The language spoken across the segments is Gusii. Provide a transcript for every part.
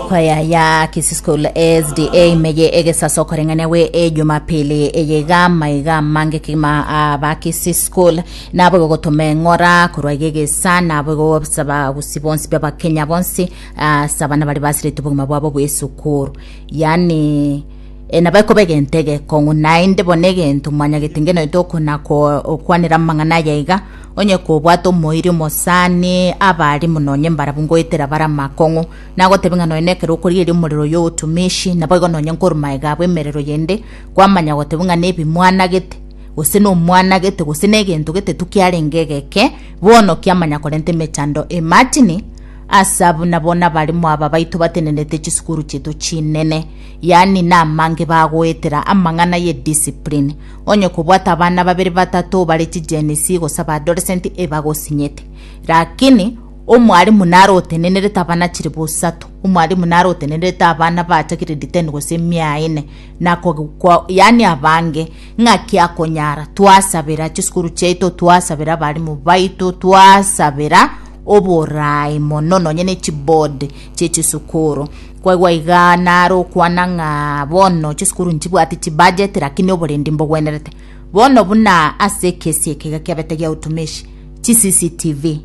Kwaya ya Kisii School SDA meye egesaso koreng'ania gwe ejumapili eye iga maiga amange kegima aba Kisii School nabo igo gotoma eng'ora korwa iga egesa nabo igo obisa bagusi bonsi b'abakenya bonsi ase abana bari basiretwe obogima bwabo bw'esukuru yani e, nabo ekoba egento egekong'u naende bono egento mwanyagete ngeno ete okona ko- okwanera amang'ana aya iga onye kobwate omoiri omosani abari mononye mbarabu ngoetera bara amakong'u Nagotebie ng'a nonya nekero okorigereria omorero oyio o otumeshi, naboigo nonya nkorwa magega abo emerero yende, kwamanya gotebia ng'a nebi mwanagete, gose nomwanagete, gose negento getetu kiarenge egeke, bono kiamanya korenta emechando ematini, ase abwo nabo nabarimo aba baito batenenete chisukuru chiaito chinene, yaani namange bagoetera amang'ana ye discipline. Onye kobwate abana babere batato bare chigenisi gose abadoresenti ebagosinyete. Lakini. Omwalimu nare otenenerete abana chilifu isato. Omwalimu nare otenenerete abana bacha grade ten gose emia ene. Na ko- ko- yaani abange ng'aki akonyara. Twasabera chisukuru chiaito, twasabera abalimu baito, twasabera oboraai mono nonye ne chiboard chie chisukuru. Kwaigwa igaa nare okwana ng'a bono chisukuru nchibwati chibudget lakini oborendi mbogwenerete. Bono buna ase ekesi eke egekebete gia utumishi, CCTV,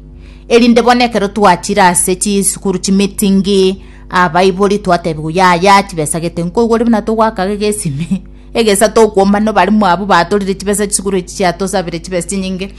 erinde bono ekero twachire ase chisukuru chimitingi abaibori twatebiwa yaya chibesagete nkoigwere buna togoakaga egesimi egesa tokwomba nabarimu abwo batorire chibesa chisukuru echi chiatosabire chibesa chinyinge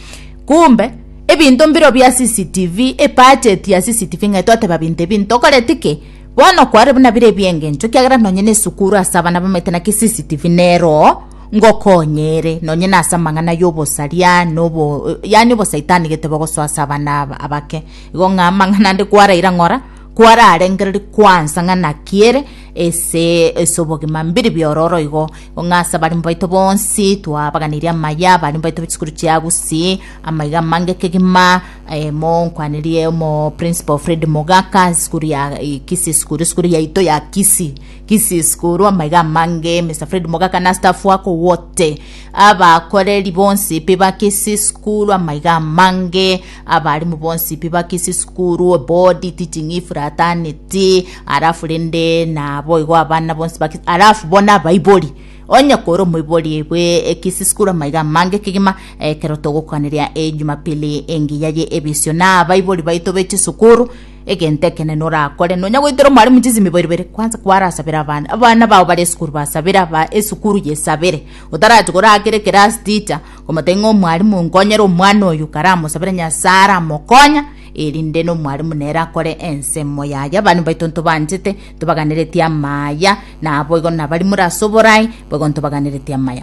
kumbe ebinto mbiro bia CCTV ebudget ya CCTV ng'ai twateba binto ebi ntokoreti ki bono kwarire buna bire ebiengencho ekiagera nonye na esukuru ase abana bamaete naki CCTV neroo ngokonyere nonye nase amang'ana y'obosaria na obo yaani obosaitani gete bogosoa ase abana aba abake igo ng'a amang'ana ande kwaraira ng'ora kwararengereri kwansa ng'a naki ere ese ase obogima mbiri biororo igo igo ng'a ase abarimbu baito bonsi twabaganirie amaya abarimbu baito be chisukuru chia gusii amaiga amange kegima mo nkwanerie omo principal Fred Mogaka isukuru ya Kisii isukuru isukuru yaito ya Kisii. Kisses korwa amaiga amange Mister Fred Mogaka na staff wako wote abakoreri bonsi pi ba Kisses korwa amaiga amange abarimu bonsi pi ba Kisses korwa body teaching if fraternity alafu rende nabo igo abana bonsi ba Kisses alafu bona abaibori onye kore omoibori egwe e Kisses korwa amaiga amange kegima ekero togokoaneria e Jumapili engiya ye ebisio na abaibori baito be chisukuru Egento ekenene orakore, nonya goitera omwalimu chisimibo ibere, kwansa kwarasabere abana. Abana bao bare esukuru basabere aba esukuru yesabere. Otarachi korakera ekerasi ticha, komotebia ng'a omwalimu nkonyera omwana oyo, karamosabere Nyasaye aramokonya, erinde na omwalimu nere akore ensemo yaye. Abana baito ntobanchete, ntobaganeretie amaya, naboigo nabaria more ase oborai, boigo ntobaganeretie amaya.